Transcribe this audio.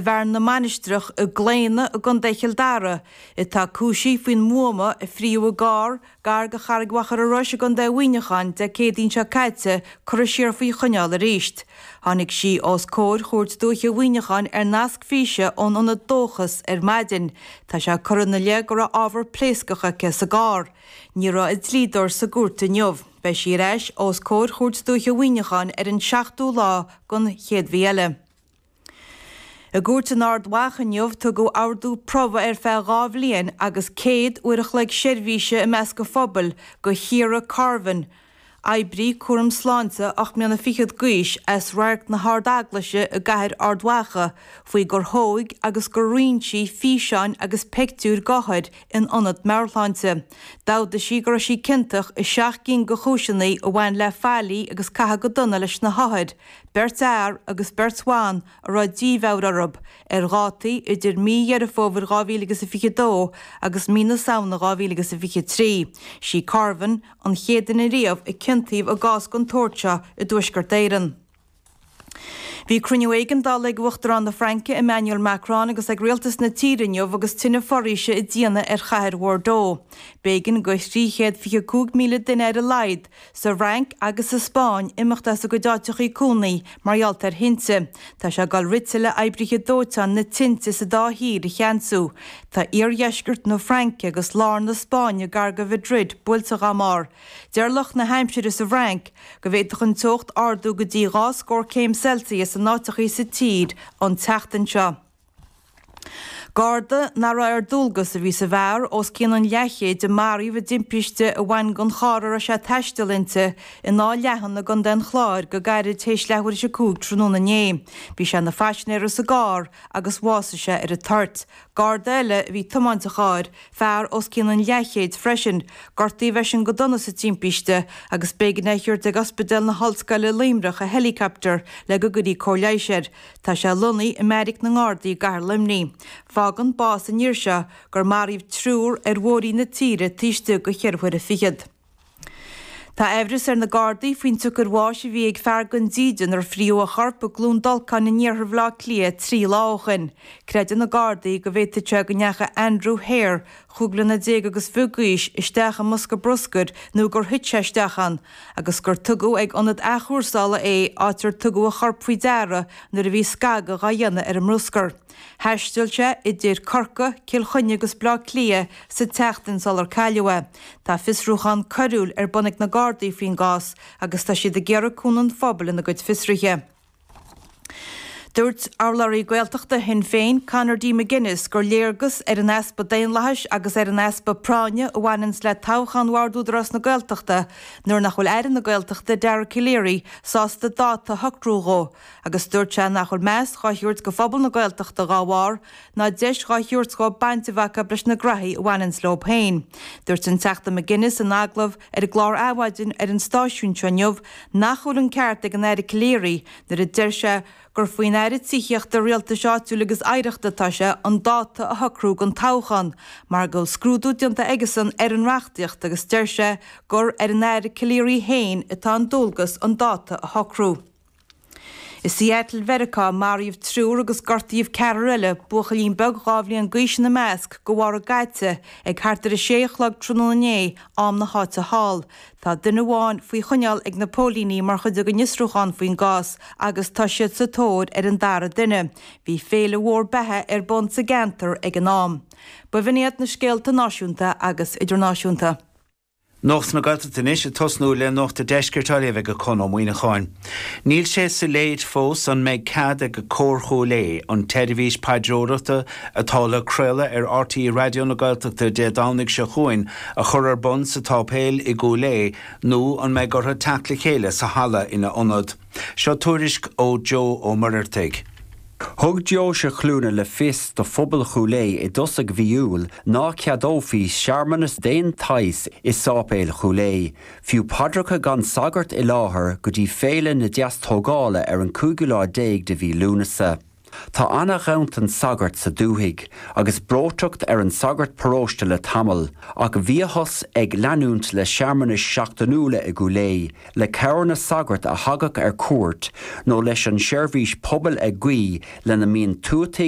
Bearna na Mainistreach i gClaonadh i gContae Chill Dara, atá cúisithe faoin mbuama a frítheadh i gcarr gar go Charraig Mhachaire Rois i gContae Mhuineacháin Dé Céadaoin seo caite curtha siar faoi choinneáil arís. Tháinig sí os comhair Chúirt Dúiche Mhuineacháin ar nasc físe ón ionad Dóchas ar maidin. Tá sé curtha ina leith go raibh ábhar pléascach aici sa gcarr. Ní raibh a dlíodóir sa gcúirt inniu. Beidh sí ar ais os comhair Chúirt Dúiche Mhuineacháin ar an tseachtú lá den chéad mhí eile. I gcúirt in Ard Mhacha inniu, tugadh ordú promhaidh ar feadh dhá bhliain agus 100 uair a chloig seirbhíse i measc an phobail do Chiara Carvin, oibrí cúram sláinte ocht mbliana fichead d'aois as Radharc na hArd-Eaglaise i gCathair Ard Mhacha faoi gur thóg agus gur roinn sí físeáin agus peictiúir d'othair in ionad meabharshláinte. D'amhdaigh sí go raibh sí ciontach i seacht gcinn de chúiseannaí a bhain le faillí agus caitheamh go dona leis na hothair, beirt fhear agus beirt bhan a raibh dímheabhair orthu ar dhátaí idir mí Dheireadh Fómhair 2022 agus mí na Samhna 2023. Sí Carvin an chéad duine riamh a ciontaíodh i gcás den tsórt seo i dTuaisceart Éireann. Bhí cruinniú éigeandála ag Uachtarán na Fraince, Emmanuel Macron, agus ag rialtas na tíre inniu agus tine foraoise ag déanamh ar chathair Bhordeaux. B'éigean go 325,000 duine ar a laghad sa Fhrainc agus sa Spáinn imeacht as a gcuid áiteachaí cónaí mar gheall ar thinte. Tá sé ag dul rite le oibrithe dóiteáin na tinte sa dá thír a cheansú. Tá iardheisceart na Fraince agus lár na Spáinne gar go Mhadrid bailte dhá mbarr. Deir lucht na haimsire sa bhFrainc go bhféadfadh an teocht ardú go dtí dhá scór céim Celsius in áiteachaí sa tír an tseachtain seo. Garda nach raibh ar dualgas a bhí sa bhfear, os cionn an leathchéid a maraíodh i dtimpiste a bhain don charr a raibh sé ag taisteal inti in Áth Leathan i gContae an Chláir go gairid théis leathuair théis a cúig tráthnóna inné. Bhí sé ina phaisinéara sa gcarr agus bhásaigh sé ar an toirt. Garda eile a bhí ag tiomáint an chairr, fear os cionn an leathchéid freisin, gortaíodh eisean go dona sa timpiste agus b'éigean é a thabhairt ag Ospidéal na hOllscoile i Luimneach i helicopter le go gcuirfí cóir leighis air. Tá sé lonnaithe i mbeairic na nGardaí i gcathair Luimnigh. Fágann bás an fhir seo gur maraíodh triúr ar bhóithrí na tíre taobh istigh de cheithre huaire fichead. Tá aimhreas ar na Gardaí faoin tsiocair bháis a bhí ag fear gan dídean ar frítheadh a chorp i gCluain Dolcáin in iarthar Bhaile Átha Cliath trí lá ó shin. Creideann na Gardaí go bhféadfadh sé go ndeachaigh Andrew Hare chúig bliana déag agus fiche d'aois isteach i mbosca bruscair nó gur thit sé isteach ann, agus gur tugadh ag ionad athchúrsála é, áit ar tugadh a chorp faoi deara nuair a bhí scagadh á dhéanamh ar an mbruscar. Thaistil sé idir Corcaigh, Cill Chainnigh agus Baile Átha Cliath sa tseachtain sular cailleadh é. Tá fiosrúchán coiriúil ar bun ag na Gardaí faoin gcás agus tá siad ag iarraidh cúnamh an phobail ina gcuid fiosruithe. Dúirt urlabhraí Gaeltachta Shinn Féin, Conor D McGuinness, gur léargas ar an easpa daonlathais agus ar an easpa práinne a bhaineanns le toghchán Bhord Údarás na Gaeltachta nuair nach bhfuil Aire na Gaeltachta, Dara Calleary, sásta dáta a shocrú dhó agus dúirt sé nach bhfuil meas dhá thabhairt do phobal na Gaeltachta dhá bharr. ná deis dhá thiúrt dóib baint a bheith acu leis na graithí a bhaineanns leob féin. Dúirt an Teachta McGuinness in agallamh ar an gclár Adhmhaidin ar an stáisiún seo inniu nach bhfuil an ceart ag an Aire Calleary nuair a deir sé gur faoin Aire Tithíochta, Rialtais Áitiúil agus Oidhreachta atá sé an dáta a shocrú don toghchán mar go bhfuil scrúdú déanta aigesan ar an reachtaíocht agus deir sé gur ar an Aire Calleary féin atá an dualgas an dáta a shocrú. I Seattle Mheiriceá, maraíodh triúr agus gortaíodh ceathrar eile, buachaillín beag dhá bhliain d'aois ina measc, de bharr a gcaite, ag thart ar 6 a chlog tráthnóna inné, am na háite thall. Tá duine amháin faoi choinneáil ag na póilíní mar chuid den fhiosrúchán faoin gcás agus tá siad sa tóir ar an dara duine. Bhí féile mhór beatha ar bun sa gceantar ag an am. B'in iad na scéalta náisiúnta agus idirnáisiúnta. Nuacht na Gaeltachta anois ag tosnú le nuacht an deiscirt á léamh ag Conn Ó Muíneacháin. Níl sé soiléir fós an mbeidh cead ag Cór Chúil Aodha, an tseirbhís paidreoireachta atá le craoladh ar RTÉ Raidió na Gaeltachta Dé Domhnaigh seo chugainn, a chur ar bun sa tSáipéal i gCúil Aodha nó an mbeidh orthu teacht le chéile sa halla ina ionad. Seo tuairisc ó Joe Ó Muirheartaigh. Thug Deoise Chluana le fios do phobal Chúil Aodha i dtosaigh mhí Iúil ná ceadófaí searmanas d'aon tsaghas i Sáipéal Chúil Aodha, fiú paidreacha gan sagart i láthair go dtí Féile na Deastógála ar an cúigiú lá déag de mhí Lúnasa. Tá ana-ghanntan sagart sa dúthaigh, agus breoiteacht ar an sagart paróiste le tamall, ach bhíothas ag leanúint le searmanais seachtainiúla i gCúil Aodha le cabhair na sagart a thagadh ar cuairt nó leis an seirbhís pobail ag guí ina mbíonn tuataigh